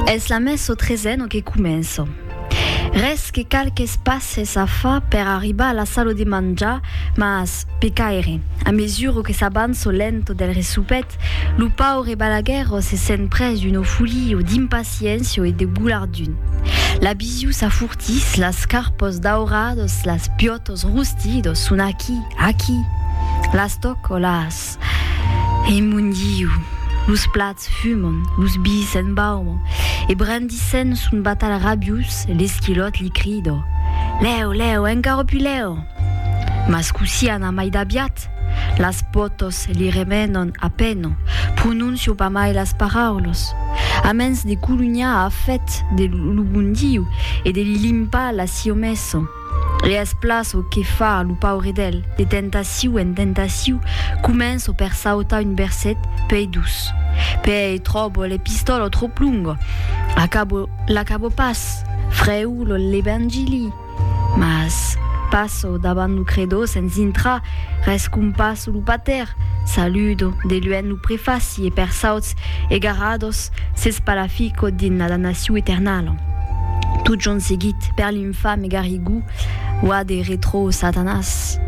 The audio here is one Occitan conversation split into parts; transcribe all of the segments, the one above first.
Es la mès o tresen que començo. Res que qualques passes a fa per arribar a la sala de manjar, mas, pecaire, a mesura que s'avanço lent del resupet, lo paure Balaguerro se sent pres d'una folia d'impaciéncia e de golardun. La bisiu s'afurtís, las carpos daurados, las piotos rustidos son aquí, aquí. Las toco, las. Ras e mon Diu! Los plats fuman, los bis s'embauman, e brandissent son batalh rabiós, l'esquilòt li crida, Lèu, lèu, encara pus lèu! Mas cossí ana mai d'aviat? Las pòtas li remenan a pena, pronóncia pas mai las paraulas. A mens de colunhar a fèt de lo bon Diu e de li limpar la siomesa, E es plan çò que fa lo paure d'el, de tentaciu en tentaciu, començo per sautar un verset pei dus, pei tròbo l'epistòla tròp longa, acabo, l'acabo pas, frèu lo l'Evangili, mas passo davant lo Credo sens intrar, rescompasso lo Pater, saludo de luènh lo prefaci e per sauts egarados s'espalafico dins la damnaciu eternala. Totjorn seguit, per Fa me garrigou, oa de retro Satanas.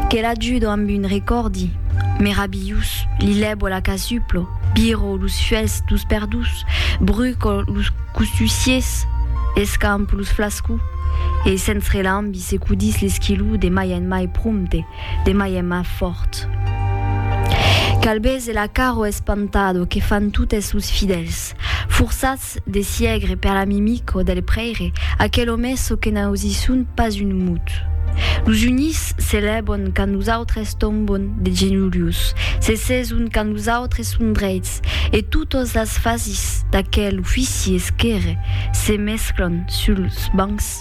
Que l'ajudo amb un recòrdi merabilhous, li lèbo la casuplo, biro los fuèlhs dos perdús, bruco los costussiers, escampo los flascous, e sens relambi secudís l'esquilou de mai en mai prompte, de mai en mai fòrt. Qu'albés e la caro espantado que fan totes los fidèls, forçats Ets de siègre per la mimica del prèire, aquel òme çò que n'ausi son pas un mut. Los unís se lèvan quand los autres tombon de genolhos, se seson quand los autres son dreits, e totas las fasis d'aquel ofici esquèrre se mesclan suls bancs.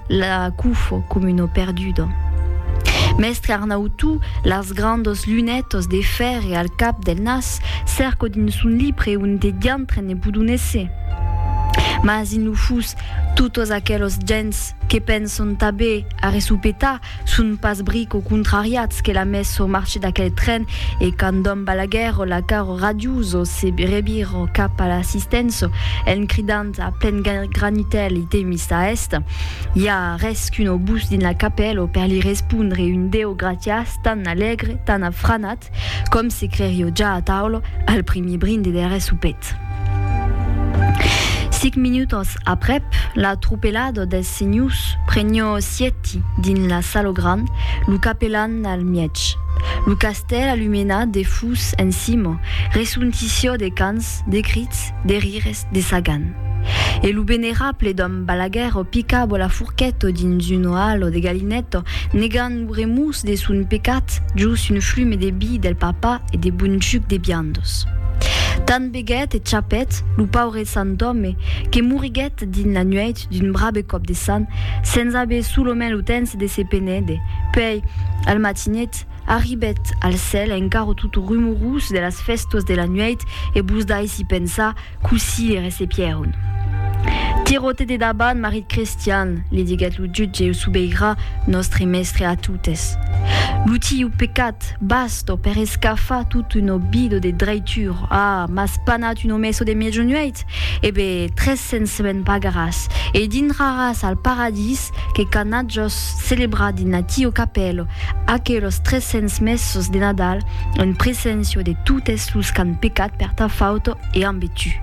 La cufo com uno perdudo. Mèstre Arnau Tu, las grandos lunètos de fèrre al cap del nas, cèrco dins son libre un de diantre ne budonèsse. Mas in lo fus, totos aquelos gents que penson tabé a resopetar, Son pas brico contrariats que la messo marche d'aquel tren e quand dom Balaguer o la caro radioso se reviro cap a l'assistenço en cridant a plen granitèl i te mis a est? I a res qu'un obús dins la capèlo per li respondre un deu gratias tan alègre, tan afranat, Ernest, com se crerio ja a taula al primier brinde der soupet. Sic minutos aprep, la tropelada des senhors prenio sieti dins la salo grand, lo capelan al mièg. Lo castèl alumenat de fus en cima, resontissió de cants, de crits, de rires, de Sagan. E lo venerable dòme Balaguer o picabo la fourquet o dins un oal o de galinet o negant lo remús de son pecat jos un flume de bi del papa e de bon juc de biandos. Tant beguèt e chapèt lo paure sant òme que moriguèt dins la nuèit d'un brabe còp de san sens aver solomènt lo tens de se penède, puèi al matinet, Arribèt al cèl encara tot rumorós de las fèstas de la nuèit e vos daissi pensar cossí li recepièron. Tiròte de davant, marit Crestian, li diguèt lo jutge o sobeirà nòstre mèstre a totes. Lo tieu pecat basta per escafar tot un obido de draitur. Ah, m'as panat un omesso de mejonuèit? E be, tres cents me'n pagaràs e dintraràs al paradís que canatjòs celebrat dins natieu capèlo Aquelos tres cents mèsos de Nadal en preséncia de totes los qu'an pecat per ta fauta e an betu.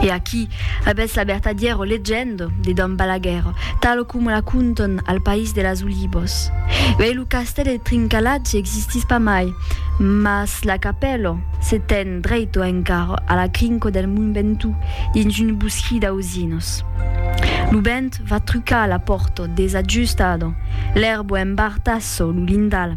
E aquí avètz la vertadièra legenda de Dom Balaguer, talo coma la contan al País de las Olivas. Uèi lo castèl de Trincalatge existís pas mai, mas la capèla se ten dreita encara a la crinca del Mont Ventoux dins un bosquí d'auzinas. Lo vent Va trucar a la pòrta, desajustada, l'èrbo embartassa lo lindal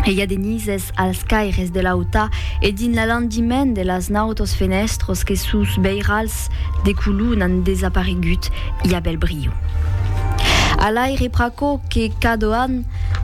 e i a de nises als caires de l'auta e dins l'alandiment de las nautas fenèstras que sus beirals de color n'an desaparegut i a bèl brio. A l'aire pr'aquò que cada an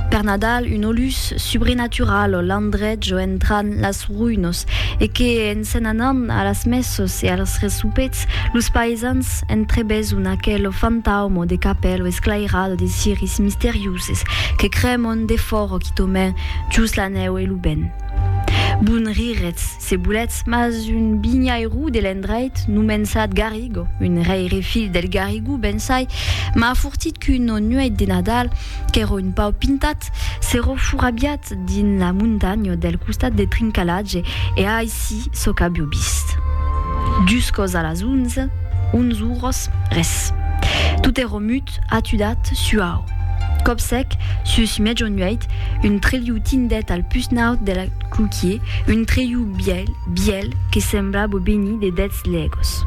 Per Nadal, un olus subrenatural o landrech o entran las ruinos e que en se'n anan a las messos e als resopets, los paesans entrebeson aquel o fantaumo de capèl o esclairado de ciris misterioses que cremon defòra quitaument jos la nèu e lo vent. Bon riretz! Se volètz, mas un vinhairó de l'endreit, nomençat Garrigo, un rèire filh del Garrigou bensai, m'a afortit qu'una nuèit de Nadal, qu'èra un pauc pintat, s'èra forabiat dins la montanha del costat de Trincalatge e a aicí çò qu'avió vist. Juscòs a las onze, onze oras, res. Tot èra mut, tot atudat suau. Còp sec, sus mètjo nuèit, un trelhou tindèt al pus naut de la cloquier, un trelhou bièl, bièl, que semblabo benir de dèts lègos.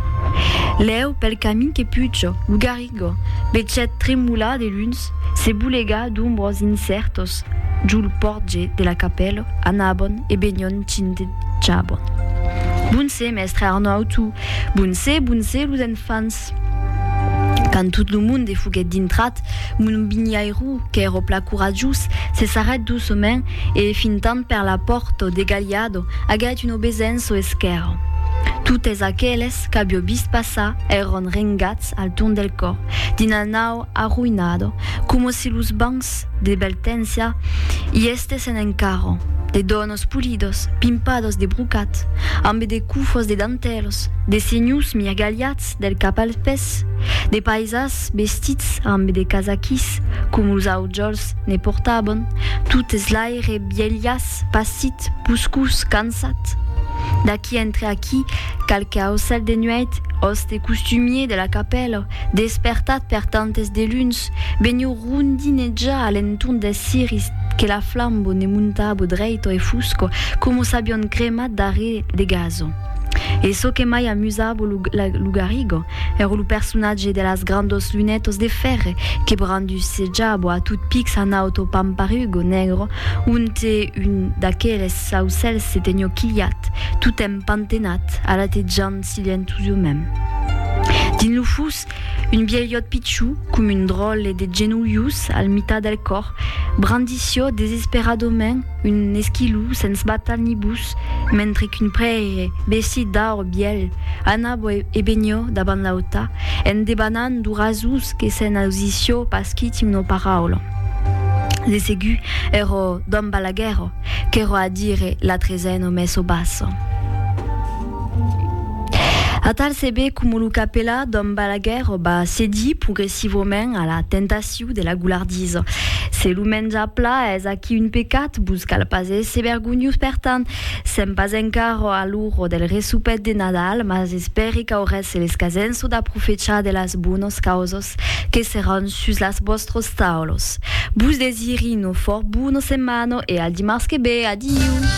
Lèu, pel camin que pujo, lo garrigo, bechet tremolar de luns, se bolega d'ombros incèrtos jo lo pòrtge de la capèlo, anabon e benion cintejabon. Bon se, mèstre Arnau, tu! Bon se, bon se, los enfants! Jesús. Quand tot lo monde foguèt dintrat, mon binhairó, qu'èro pla coratjós, se sarrèt doçament e, fintant per la pòrta, degalhado, agèt un obesenço esquèrra. Totes aqueles qu'avió vist passar èron rengats al torn del còr, dins la nau arroïnada, coma si los bancs de Beltensia i estéssen encara, de donas Los polidos, pimpados de brocat, ambe de cufos de dantèlos, de senhors mirgalhats del cap als pès, de païsas vestits ambe de casaquis, coma los aujòls ne portavan, totes l'aire bielhas, passit, puscós, cansat. D'aquí entre aquí, qualque aucèl de nuèit, òste costumier de la capèla, despertat per tantes de luns, veniu rondinejar a l'entorn deth ciris que la flambo ne montabo dreito e fusco coma s'avion cremat darrèr le gaso. E çò que mai amusabo lo Garrigo èra lo personatge de las grandos lunetos de fèrre que brandussejabo a tot pics a naut au pamparugo negro onte un d'aqueles aucèls se tenió quilhat, totemp pantenat, alatetjant Silentu jo mèm. Dins lo fus, un vielhòt pichou, com un dròlle de genolhus al mitat del còr, brandissió desesperadament un esquilou sens batal ni bus, mentre qu'un prèire, vestit d'aur bièlh, anabó e venió davant l'auta, en debanant lo rasús que se'n ausissió pas quiti una paraula. De segur, èró Dom Balaguèró, qu'èró a dire l'atre zen o mès o bassa. Atal se be coma lo capelà d'Òm Balaguèr va cedir progressivament a la tentaciu de la goulardisa. Se lo menjar pla es aquí un pecat, vos cal pas èsser vergonhós per tant. Sèm pas encar a l'ora del resopet de Nadal, mas espèri qu'aurètz l'escasenço d'aprofechar de las bonas causas que seràn sus las vòstras taulas. Vos desiri una fòrt bona setmana e al dimars que be. Adiu!